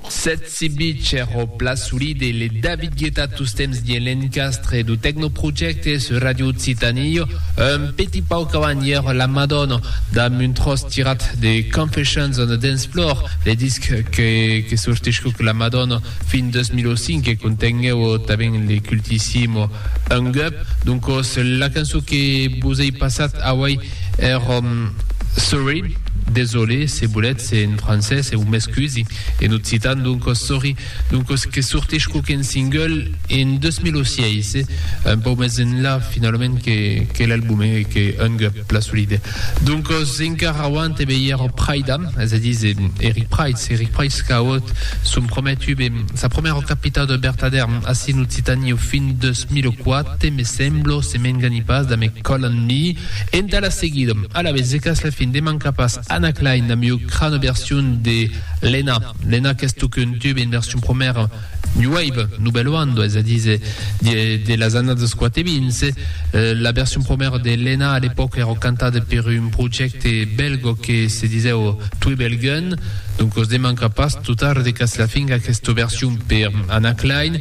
Sètz Sibitger o Pla Solide, le David Guetta tostemps dins l'encastre dau Tecnoprojecte sur Radio Occitanie, un petit pauc avant ièr la Madonna, damb un tròç tirat de Confessions on a Dance Floor, le disc que que sortiscuc la Madonna fin 2005 e contenguèu tanben le cultissimo Hung Up, doncos la cançon que vos ei passat auei Er òm, Sorry, desolé, se volètz, en francés, eu m'excusi, en occitan, doncos sorry, doncos que sortís quauqu'un single en 2006, un pauc mès enlà, finalament, que l'album, e que hung la solide. Doncos, encara auant e melhèr Praida, es a díser, Eric Prydz, Eric Prydz qu'a auut son prumèr tube, sa prumèra capitau de bertadèr, ací en Occitània, fin 2004, Te me semblo, se m'engani pas damb eth còl en mi. Entà la seguida, alavetz e qu'as la fin de mancar pas Anna Klein damb ua crana version de Lena. Lena qu'es tò qu'un tub en version promèra New Wave, Nouvelle Onde, es a díser, de las annadas quate vins. La version promèra de Lena a l'epòca èra cantada per un projècte bèlgo que se disèu Twibelgen. Donc os demanca pas, totard e qu'as la fin, aquesta version per Anna Klein.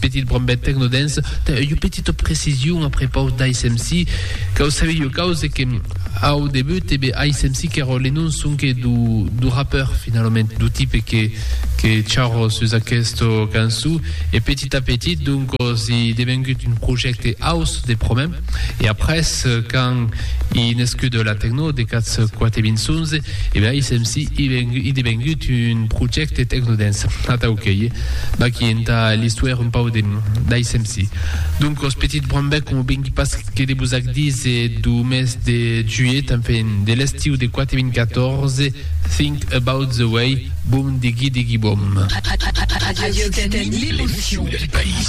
Petit brombet tecnodens, ta eu petita precision a prepaus d'ASMC, cau sabi eu caus e que au debut e be ASMC qu'èra le nom sonque do do rappeur finalament, do tipe que que chara sus aquesta cançon e petit a petit donc si devengut un projècte house de promèm. E après, quand i nescut la tecno de Cats Quate Vinçonze, e ben ISEMSI i devengut un projècte tecnodens. Atau qu'ei vaquí entà l'istuèr un pau d'ISEMSI. Doncos, petit brombèc, coma vengui pas que de vos ac díser, dau mes de juilhet, enfin, de l'estiu de Quate Vin Catòrze, Think About The Way, Boom Diggy Diggy Boom. Radio Occitanie, l'émotion du pays.